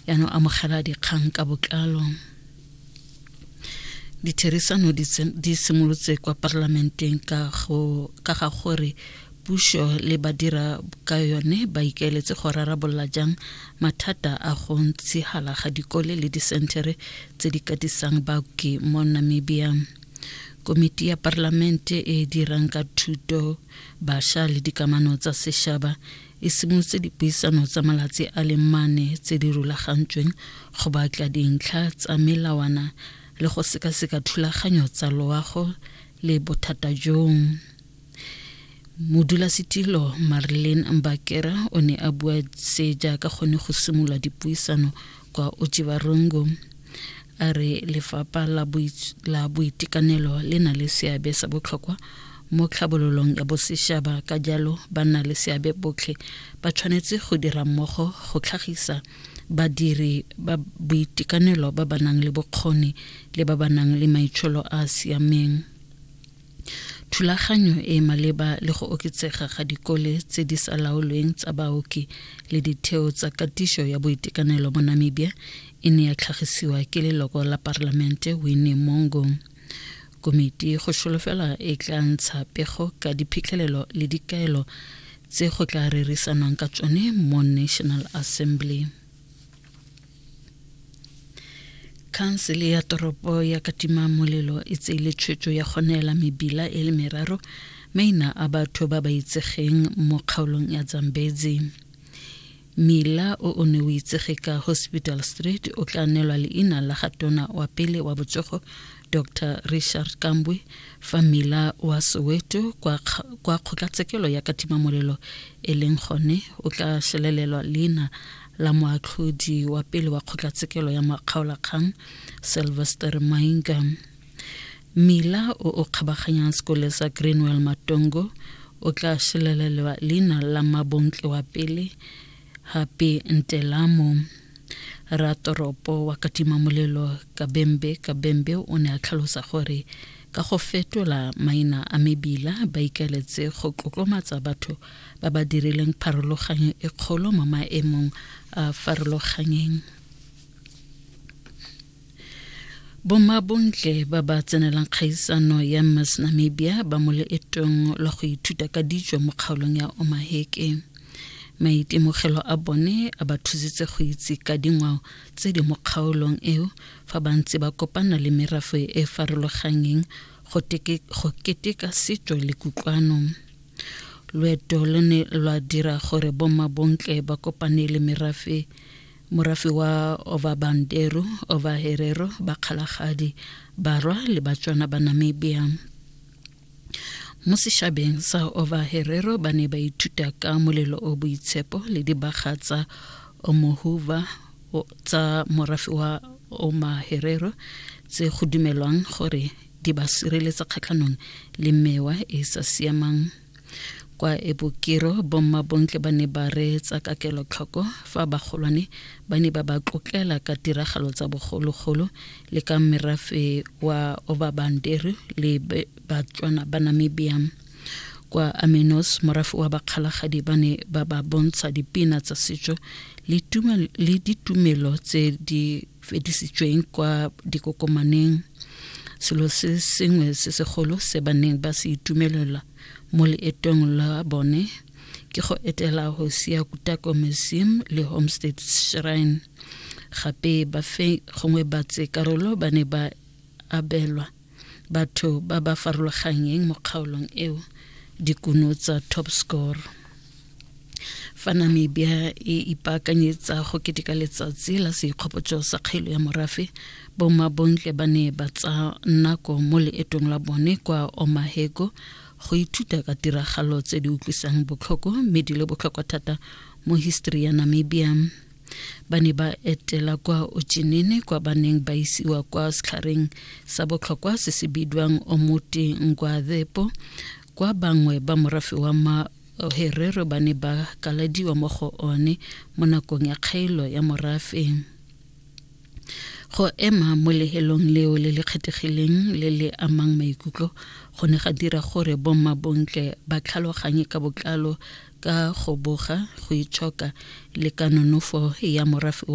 yaanong amogela dikgang ka botlalo ditherisano di simolotse kwa parlamenteng ka ga gore puso le badira ka yone ba ikaeletse go rarabolola jang mathata a go ntshigala ga dikole le disentere tse di katisang baoki mo namibia komiti ya parlamente e dirang ka thuto basha le dikamano tsa sešaba e simolotse dipuisano tsa malatsi a le mane tse di rulagantsweng go batla dintlha tsa melawana le go sekaseka thulaganyo tsa loago le bothata jong modulasetilo marlin mbakera o ne a bua se jaaka gone go simolola dipuisano kwa ojibarongo a re lefapha la boitekanelo le na le seabe sa botlhokwa mo tlhabololong ya bosešaba ka jalo ba nna le seabe botlhe ba tshwanetse go dira mmogo go tlhagisa badiri ba boitekanelo ba ba nang le bokgoni le ba ba nang le maitsholo a a siameng Thulaganyo e e maleba le go oketsega ga dikole tse di sa laolweng tsa baoki le ditheo tsa katiso ya boitekanelo mo Namibia e ne ya tlhagisiwa ke leloko la parlamente Winnie Mongo. Komiti go solofela e tla ntsha pego ka diphitlhelelo le dikaelo tse go tla rerisanwang ka tsone mo National Assembly. khansele ya toropo ya katima molelo e tseile tshwetso ya go neela mebila e le meraro maina a batho ba ba itsegeng mo kgaolong ya zambezi mila o o ne o itsege ka hospital street o tla neelwa leina la ga tona wa pele wa botsogo dr richard kambwe fa mila wa soweto kwa, kwa kgotlatshekelo ya katima molelo e leng gone o tla šelelelwa leina la moatlhodi wa pele wa kgotlatshekelo ya makgaolakgang sylvester mainga mila o o kgabaganyang sekole sa greenwell matongo o tla šelelelwa leina la mabontle wa pele gape ntelamo ratoropo wa katima molelo kabembe kabembe o ne a tlhalosa gore ka go fetola maina a mebila ba ikaletse go tlotlomatsa batho ba ba dirileng pharologanyo e kgolo mo maemong a farologanyeng bomabontle ba ba tsenelang kgaisano ya miss namibia ba mo leetong la go ithuta ka dijo mo kgaolong ya omaheke maitemogelo a bone a ba thusitse go itse ka dingwao tse di mo kgaolong eo fa ba ntse ba kopana le merafe e farologanyeng go keteka setso le kutlwano loeto lo ne lwa dira gore bommabontle ba kopane le merafe morafe wa Ovabandero, Ovaherero, Bakgalagadi, Barwa le Batswana ba Namibia. Mo sešabeng sa Ovaherero ba ne ba ithuta ka molelo o boitshepo le dibaga tsa Omohuva tsa morafe wa Omaherero tse go dumelwang gore di ba sireletsa kgatlhanong le mewa e e sa siamang kwa ebokero bomma bontle ba ne ba reetsa ka kelotlhoko fa bagolwane ba ne ba ba tlotlela ka tiragalo tsa bogologolo le ka merafe wa obabanderu le batswana ba namibia kwa aminos morafe wa bakgalagadi ba ne ba ba bontsha dipina tsa setso le ditumelo tse di fedisitsweng kwa dikokomaneng selo se sengwe se segolo se ba neng ba se itumelela mo leetong la bone ke go etela hosia kutako museum le homestead shrine gape ba fe gongwe batse karolo ba ne ba abelwa batho ba ba farologanyeng mo kgaolong eo dikuno tsa top score fa namibia e ipaakanyetsa go keteka letsatsi la seikgopotso sa kgaelo ya morafe bomabontle ba ne ba tsa nako mo leetong la bone kwa omahego go ithuta ka tiragalo tse di utlwisang botlhoko mme di le botlhokwa thata mo history ya namibia ba ne ba etela kwa ochinene kwa ba neng ba isiwa kwa setlhareng sa botlhokwa se se bidwang omote nkwathepo kwa bangwe ba morafe wa ma herero ba ne ba kaladiwa mo go one mo nakong ya kgaelo ya morafe go ema mo lehelong leo le le kgethegileng le le amang maikutlo go ne ga dira gore bomma bontle ba tlhaloganye ka botlalo ka go boga, go itshoka le ka nonofo ya morafe wa